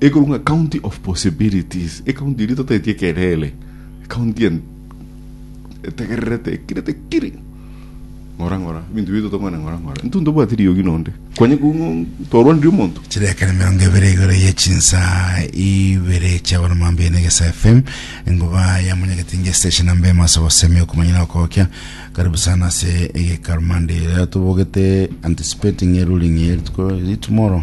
Ekorwa ng'a county of possibilities, ecounty eria totaeti ekerere, ecounty en- etegererete, ekirete kiri ng'ora ng'ora, ebinto bito tokwana ng'ora ng'ora, intwe ntobwati riogi nonde, kwanye koo ng'o twarwanirie omonto. chirekare mirongo ebere igoro ye chinsa ibere chia bono mambia na egesa fm engoba ya munyagetinge station namba emo ase obosemi okomanya na okogokia karibu sana ase egeka rumande rero tobogete anticipating a ruling ye rituko ri tomorrow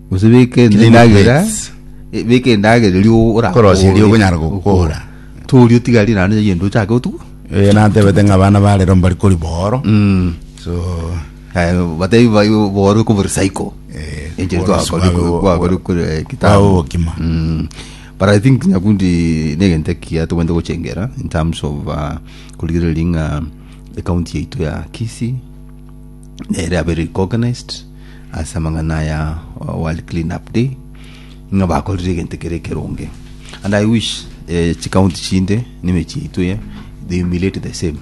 Gose beka Clean endagera plates. eh, beka endagera erio ora- Korosia erio okonyara gokora. toria otigari naende egento ochake otugu Eh, nantebete ng'a abana ba rero mbari kori booro so Eh, batebi bai boorwe kobo recycle Eh, Enchiri boorwe twakori- sibabe- twakori kore babe kitambo obokima. Mm. but i think nyakundi negento ekiya togwente gochengera in terms of uh, korigereria ng'a ekaunti yaitu ya kisi nere abere recognized ase amang'ana aya o World Clean Up Day, ng'a bakorire egento kere ekeronge. And I wish eh, chikaunti chinde na emechie yaito eye, they emulate the same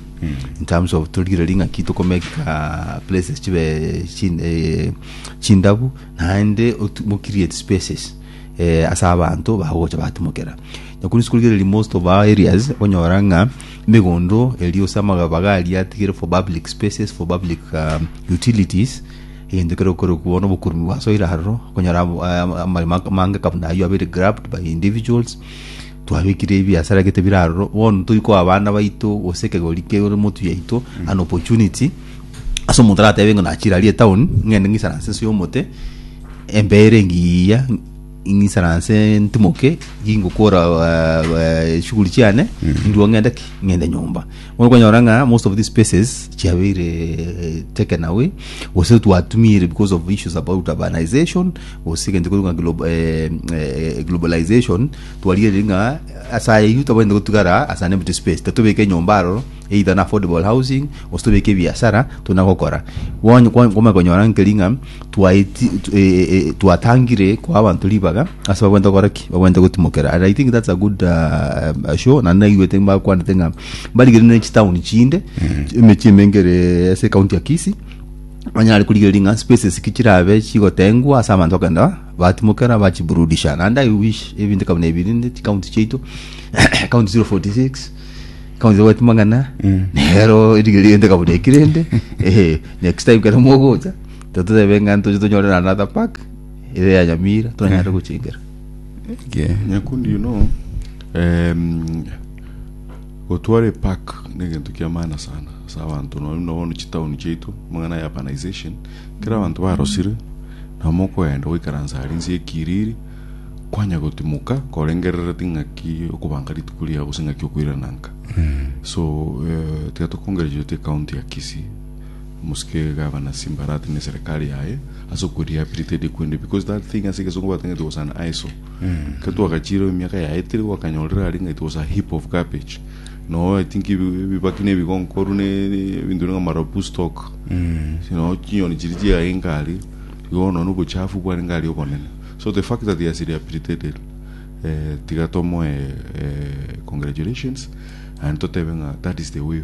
in terms of torigereria ng'a ki tokomeka places chibe chin- eh, chindabu naende otu- mo create spaces eh, ase abanto bagocha batimokera. Nyakorwa inse korigereria most of our areas, onyora ng'a Megondo eria gose amagabaga aria atigire for public spaces, for public um, utilities, egento kere okorokwa nobokurumi bwa soil aroro konyora abo- a- amarima mange kabuna ayio abere grabbed by individuals twabekire ebiasara gete bire aroro bono toikoa abana baito gose ekegori kere motu yaito an opportunity ase omonto aratebe ng'a nachire aria etown ng'ende ng'isaranse ense y'omote embeere engiya Ing'isaranse ntimoke, ngingokora chiguri chiane, indua ng'ende ki? Ng'ende nyomba. Bono okonyora ng'a most of these spaces chiabeire eh, taken away, gose twatumire because of issues about urbanization, gose egento korwa ng'a glo- eh, eh, globalization, twarigereria ng'a ase ayio tabwenerete gotigara ase an empty space, tatobeka enyomba aroro, either na affordable housing, gose tobeke ebiasara, tuna gokora. Bono kwa- kwamanya konyora nkeri ng'a. twaeti tu- eh, eh, eh, twatangire kwa abanto ribaga ase bagwenta gokora ki bagwenta gotimokera and i think that's a good uh, uh, show na naigwete bakwanete ng'a barigere ne chitown chinde emechie emengere ase county ya kisi banyare kurigereria ng'a spaces ki chirabe chigotengwa ase abanto bakenda batimokera bachiburudisha naende i wish ebinto kabuna ebi rinde chikaunti chiaito county 046 kaunti gwetu mang'ana nero erigere rinde kabuna ekirende ehe next time kero mogocha Totebe ng'a ntoche tonyore na another pack ere ya nyamira tonyare gochingera. Okay. Nyakundi you know um, gotwara epak ni egento kia maana sana asa abanto nonye buna bono chitauni chiaito amang'ana ya urbanization kera abanto barosire na mokogenda goikaransa aria nse ekiriri kwanya gotimoka korengerereti ng'aki okobanga rituko riao gose ng'aki okoirana nka so eh, tiga tokongereria oti ekaunti ya Kisii Mosike Gavana Simbarat ne Serikali yaye ase oko rehabilitate ekwende because that thing ase egesongo batangete was an eyesore. Ekero twagachireo emiaka yaetire gwakanyorire are ng'a it was a heap of garbage. Noo I think ebi- ebibaki na ebigonkoru ne ebinto bire ng'a marabu stock. Noo chinyoni chiria chiarenge aria igo bono obochafu bwarenge aria obonene. So the fact that he has rehabilitated eh, tiga tomoe eh, congratulations and totebe ng'a that is the way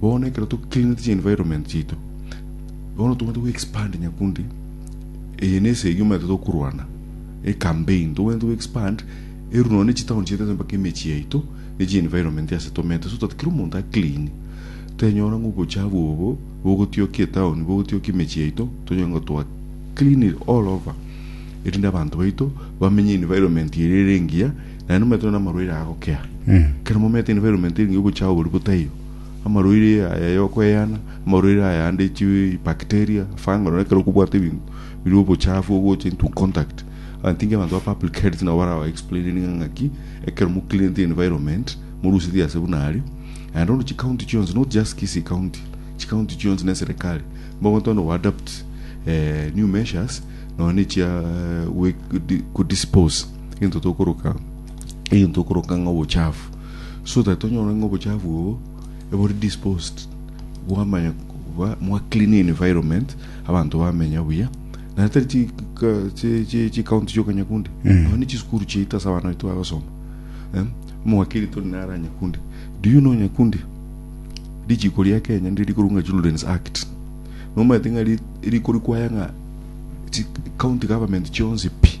bono ekero to cleanete chi environment chiaito bono tobwenerete go expand nyakundi eye nese egi omanyete tokorwana e campaign tobwenerete go expand eru nonya ne chitown chiaito ase mpaka emechi yaito ne chi environment ase tomete so that kera omonto a clean tenyora ng'a obochafu obo bogotioka etown bogotioka emechi yaito tonyore ng'a twa clean it all over erinde abanto baito bamenye environment ere ere engiya Naende mometenwe namarwaire aya agokea. Ekero momeete environment eri ngogocha oboria botaiyo, amarwaire aya yokweyana, amarwaire aya ande chi bacteria, fungal, nonye ekero okobwata ebinto biri obochafu ogocha into contact. I think abanto ba public health nabo baraba explaining ng'a ng'aki ekero mo cleanete environment morusetie ase buna aria. Naende bono chicounty chionsi not just Kisii county, chicounty chionsi na eserekari mogotoonde go adapt eh new measures nonye na echia eh, goe- kodi- kodispose Egento tokoroka, egento tokoroka ng'a obochafu. So that onyore ng'a obochafu obo ebore disposed, bwamanya ba- mwa clean environment, abanto bamenya buya. Na tari chi- ka- chi- chi- chikaunti chioka Nyakundi. Aba ni chisukuru chiaito ase abana baito bagosoma. Eh, Omowakiri tori naro aa Nyakundi. Do you know Nyakundi? Richiko ria Kenya ndiri rikorwa ng'a Children's Act. Nomanyete ng'a ri- riko rikwaya ng'a chi- county government chionsi pi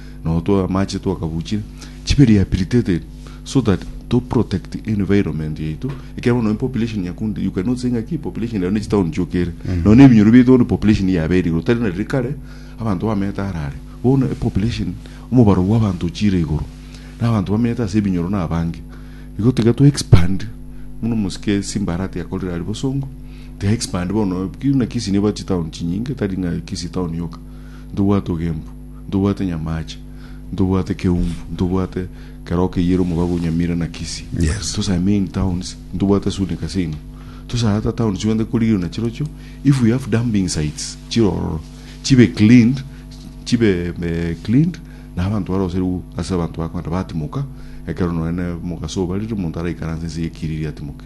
na otwao amache twakabuchire chibe rehabilitated so that to protect environment yaito ekero bono population yakunde you cannot say ng'aki population yayo ne chitown chiokere mm. nonya ebinyoro biaito bono population yabe eri igoro tari nariri kare abanto bamete arare bono population omobaro bwa abanto ochire igoro na abanto bamete ase ebinyoro na abange igo tiga to expand muno mosike simbarati yakorire ari bosongo tiga expand bono na kisi ne bati town chinyinge tari ng'a kisi town yoka ntobwate ogembu Ntobwate nyamaache, ntobwate keumbu, ntobwate keroo keyire omobago o Nyamira na Kisii. Yes. Those are main towns, ntobwate sure ne casino. Those are other towns chigwenerete korigerwa nachirochio, if we have dumping sites chire ororo, chibe cleaned, chibe eh, cleaned, na abanto baroserigwe ase abanto bakogenda batimoka, ekero nonye ne omogaso obarire, omonto araikaranse ense eyekiriri atimoke.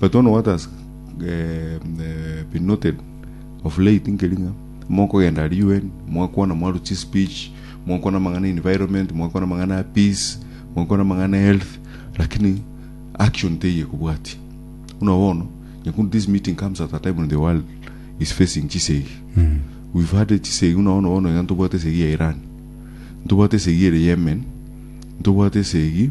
But one what has been noted of late nkeri ng'a mokogenda aria UN mwakwana mwarwa chi speech, mwakwana amang'ana ya environment, mwakwana amang'ana ya peace, mwakwana amang'ana ya health lakini action teiyo ekobwatia. Buna bono nyakunde this meeting comes at a time when the world is facing chisegi. We've had chisegi buna bono bono iga ntobwate esegi ya Iran, ntobwate esegi ere Yemen, ntobwate esegi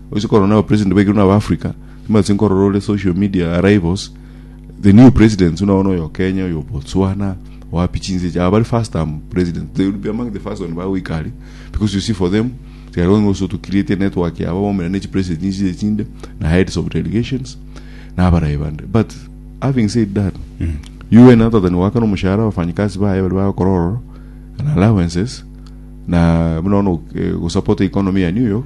Ase korwa naba president baigirwe naba Africa, timanyete nkorora ore social media arrivals, the new presidents buna bono oyo Kenya, oyo Botswana, wapi chinse echi, aba bari first term presidents, they will be among the first one bagoika aria, because you see for them, tiga kogenda gose to create a network yabo baumera ne chi president chinse echi chinde, na heads of delegations, na abarayi bande, but having said that, UN natatani goakana omoshahara abafanyikazi baye baria bagokora ororo, na allowances, na buna bono eh, gosupporta economy ya New York,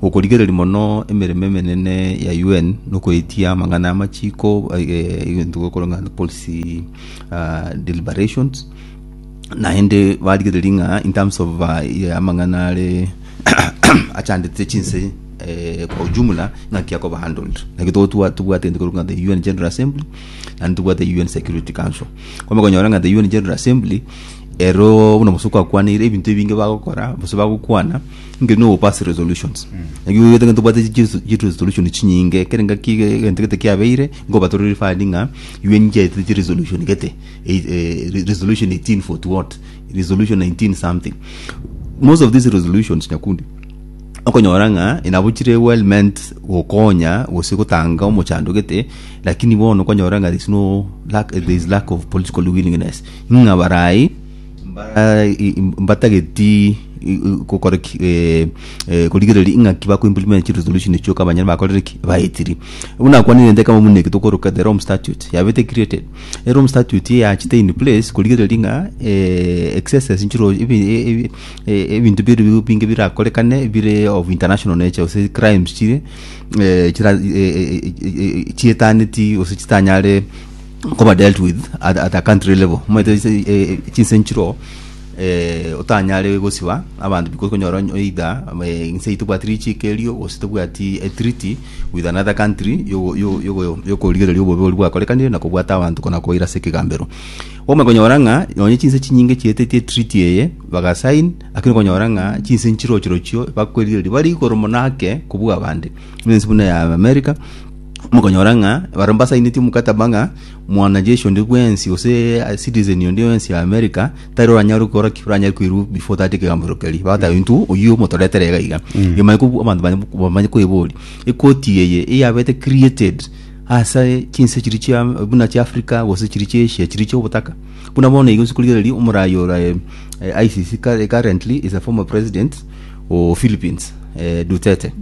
Gokorigereria mono emeremo emenene ya UN nokoetia amang'ana amachiko egento gokorwa ng'a policy uh, deliberations naende barigereria ng'a in terms of uh, yeah, amang'ana are achandete chinse eh, kwa ujumla ng'aki akoba handled naki tobwate gento korwa ng'a the UN General Assembly naende tobwate UN Security Council kome konyora ng'a the UN General Assembly ero buna bosuku akwanire ebinto ebinge bagokora bose bagokwana Ngenywa obo pass resolutions. Naki oigete ng'a tobwate chi- chi- chi resolution chinyinge, kere ngaki ge- egento gete kiabeire, ngoba tore referred ng'a UN chiaetete chi resolution gete, ei- eh, re- resolution 18 for to what, resolution 19 something. Most of these resolutions nyakundi, okonyora ng'a nabo chire well meant gokonya gose gotanga omochando gete, lakini bono okonyora ng'a there is no lack, there is lack of political willingness ng'a barai, mba- i- i- mbatageti i- i- gokora ki eh, eh, korigereria ing'aki bakoimplement chiresolution echio ka abanyene bakorire ki baetiri buna nakwanire nte kama buna eke tokoroka the rome statute yabete created erome statute eye yachete in place korigereria ng'a eh, excesses nchiro ebi e- e- e- ebinto biri bi- binge birakorekane bire of international nature gose crimes chire eh, chira eh, eh, eh, eh, chietaneti gose chitanyare nkoba dealt with at, at a country level moete ase, eh, chinse nchiro eh, otanyare gosiba abanto because konyora onye- either eh, inse eye tobwati richiko erio gose tobwati a treaty with another country yogo- yo- yogo- yokorigereria obobe boria bwakorekanire na kobwata abanto kona koira ase ekegambero okoba konyora ng'a nonye chinse chinyinge chieteti etreaty eye baga sign lakini okonyora ng'a chinse nchirochi rochio bakwerigereria bari igoro mono ake kobua abande buna ense buna ya America mokonyora ng'a barabwo mbasaineti omokataba ng'a mwanajeshi onde bwensi gose citizen onde bwensi ya America tari oranyare gokora ki oranyare koirwa before tata ekegamero keria bagoteeba intwe oyio omotoretere iga iga emanye kobua abanto banye bamanye koiboria ekoti eye eyabete created ase chinse chiria chia buna chia Africa gose chiria chia Asia chiria chia obotaka buna bono igo nse korigereria omoraai ora eh ICC kare currently is a former president o Philippines eh Duterte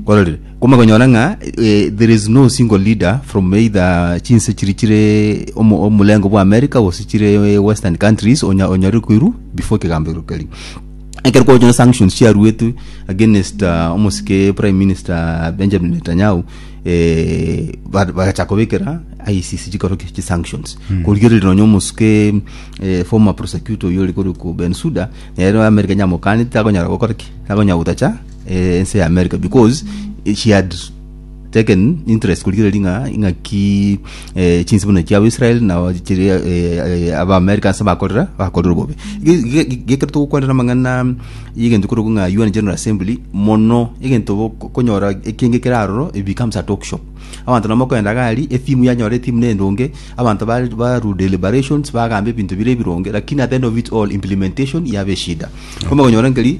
ororire. Koma konyora ng'a eh, there is no single leader from either chinse chiri chire omo- omulengo bwa America gose chire eh, western countries onya onyore koiru before ekegambo ero keri ekero kwachona sanctions chiaruetwe against uh, omosike prime minister Benjamin Netanyahu eh, ba- bagacha kobekera ICC chikoro ki chi sanctions mm. korigereria nonya omosuke eh, former prosecutor oyo ore kore ku Bensuda nero America nyamokanete takonyara gokora ki takonyara gotacha eh, ense ya america because eh, she had s- taken interest kurigereria ng'a ing'aki eh, chinse buna chiabo israel na chiri eh, eh, aba america ase bakorera bakorera obobe gekero togokwanera amang'ana y'egento korogu ng'a un general assembly mono egento bo- ko- konyora ekenge kere aroro it becomes a talk shop abanto namo kogenda gari etimu yanyora etimu nendonge abanto ba- baru deliberations bagamba ebinto bire ebironge lakini at the end of it all implementation yabe eshida komokonyora nkeri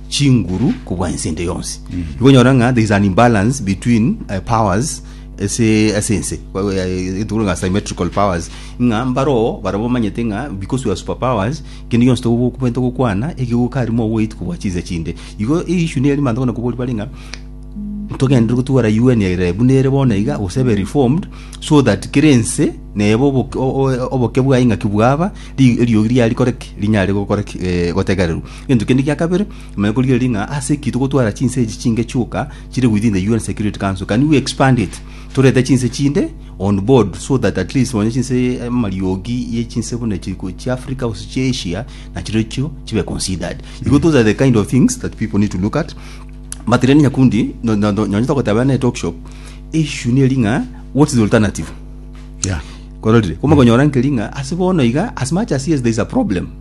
chinguru kobua ense ende yonsi ibonyora ng'a there is an imbalance between uh, powers ase ase ense etuguru ng'a symmetrical powers ng'a mbaroo barabo bamanyete ng'a because we are super powers kende yonsi togobenta gokwana egegokari moweit kobua chinse chinde igo eishu neri manto kona kobori bare ng'a togenderere gotwara UN ere buna ere bono iga gose ebe reformed so that kera ense neba oboke bwaye ng'aki bwaba ri- eriogi riaye rikoreki rinyare gokoreki eh, gotegererwa Egento kende gia kabere, manya korigereria ng'a ase ki togotwara chinse echi chinge chioka chire within the UN Security Council. Can we expand it? Torete chinse chinde on board so that at least onye chinse eh, amariogi ye chinse buna echi ko- chia Africa gose chia Asia na chirochio chibe considered. Because those are the kind of things that people need to look at. But then nyakundi no- no- no- nonye togoteba na talk shop issue neri ng'a what is the alternative? Yeah. kororire komokonyora nkeri ng'a ase bono iga as much as yes there is a problem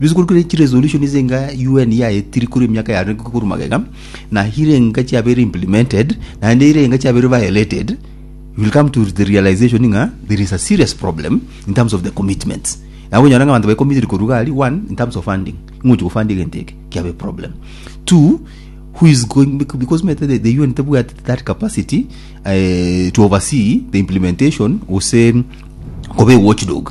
Bikorwa ne chiresolution ase enka UN yaetiri korwa emiaka yane korwa magega na hire enka chiabeire implemented naende ire enka chiabeire violated you will come to the realization ng'a there is a serious problem in terms of the commitments na okonyora ng'a abanto baye committed korwa iga aria one in terms of funding ng'ochi gofandi egento eke kiabe problem two who is going bec- because omanyete the, the UN tebwati that capacity eh, to oversee the implementation gose koba ewatchdog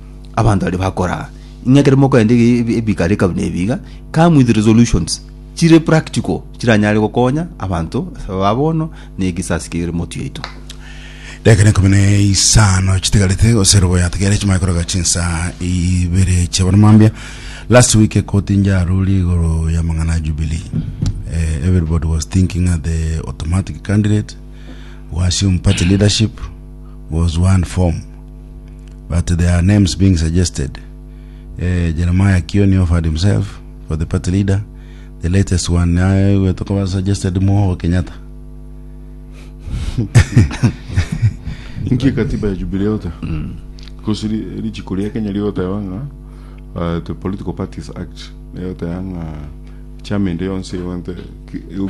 abanto baria bakoraa ing'e ekero mokorenta ebi- ebi- ebikare eka buna ebi iga come with resolutions chire practical chiranyare gokonya abanto ba bono na egesasi kere motwe yaito Dakika na ikomi na isano chitigarete gose robo yatigere chimanye koroka chinsa ibere chia bono mambia last week ekoti njaruri igoro ya mang'ana ya jubilee eh, everybody was thinking that the automatic candidate who assumed party leadership was one form but their names being suggested eh, Jeremiah Kioni offered himself for the party leader the latest one naye gwetu koba suggested Moho Kenyatta Inki katiba ya Jubilee ote? Because ri- richiko ria Kenya rigoteba ng'a uh, the Political Parties Act rigoteba ng'a chama ende yonsi egwente ki- eu-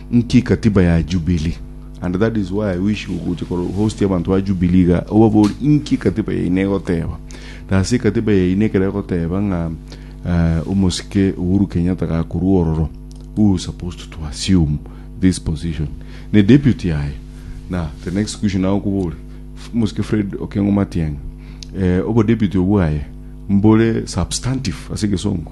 Nki katiba ya Jubilee? And that is why I wish ogocha koro host abantu ba Jubilee iga obabori inki katiba yaino egoteba. Na ase ekatiba yaino ekero egoteba ng'a uh, omosike Uhuru Kenyatta gakorua ororo who is supposed to assume this position ne deputy yaye na the next question nawe okobore omosike Fred Okengo Matiang'i eh, obo deputy obwaye mbore substantive ase egesongo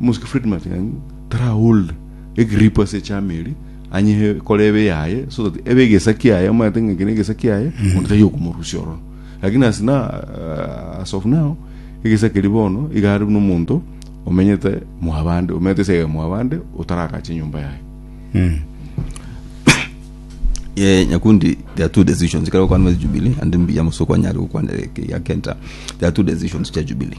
Mosike Friedman ng'ai tara hold egripu ase echama eria anyehe kore ebe yaye so that ebe egesa kiaye omanyete ng'a eke na egesa kiaye monto taiyo okomorusia ororo lakini as na uh, as of now egesa keri bono igare buna omonto omenyete mwabande omenyete ase mwabande otaragache nyomba yaye mm. Yeah, Nyakundi, there are two decisions. Kero kwa Jubilee and mbiya musoko anyari kwa kenta. There are two decisions cha Jubilee.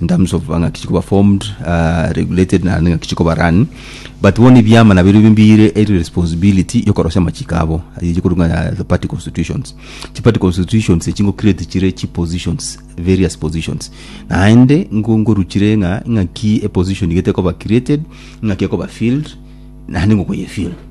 in terms of ng'aki chikoba formed uh, regulated na ng'aki chikoba run but bono ebiama nabio nabio mbire eri responsibility yokorosia amachiko abo yikorunga the party constitutions chi party constitutions echi ngo create chire chi positions various positions naende ngo ngoruchire ng'a ng'aki a position gete koba created ng'aki ekoba filled naende ngokoye filled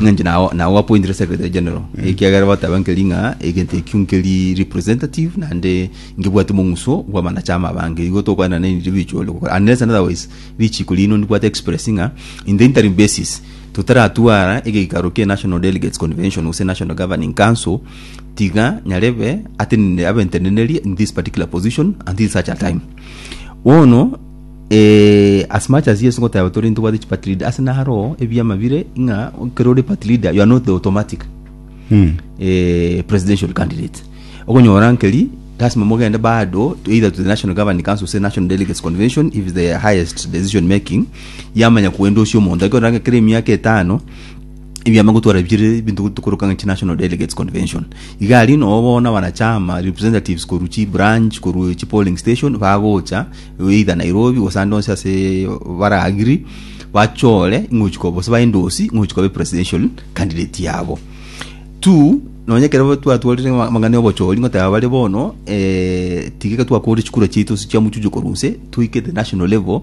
Ng'a inche nao nao gwapointire secretary general ekiagera bataba nkeri ng'a egento ekio nkeri representative naende nkebwate omong'uso bwa abanachama abange igo tokwana nini ribicho ore gokora unless and otherwise richiko rino ndibwate express ng'a in the interim basis totaratwara egeikaro kie national delegates convention gose national governing council tiga nyarebe atenene abentenenerie in this particular position until such a time bono Eh, as much as Yesu ngoteba tori ntobwate chi part leader ase naro ebiama bire ng'a ekero ore part leader you are not the automatic Mm. eh, presidential candidate okonyora nkeri lasima mogende bado to either to the national governing council say national delegates convention if the highest decision making yamanya kuendosio omonto ekero kera emiaka etano Ebiama gotwara bire ebinto tokoroka ng'a chinational delegates convention. Iga aria nobo bono abanachama representatives korwa chibranch korwa chipolling station bagocha either Nairobi gose ande onsi ase bara agree bachore ing'ochi koba gose ba endorse ing'ochi koba presidential candidate yabo. Two, nonye ekero twatwarire amang'ana ya obochori ngoteba bare bono eh, tiga ekero twakore chikura chiaito ase chiamochuchokorwa nse toike the national level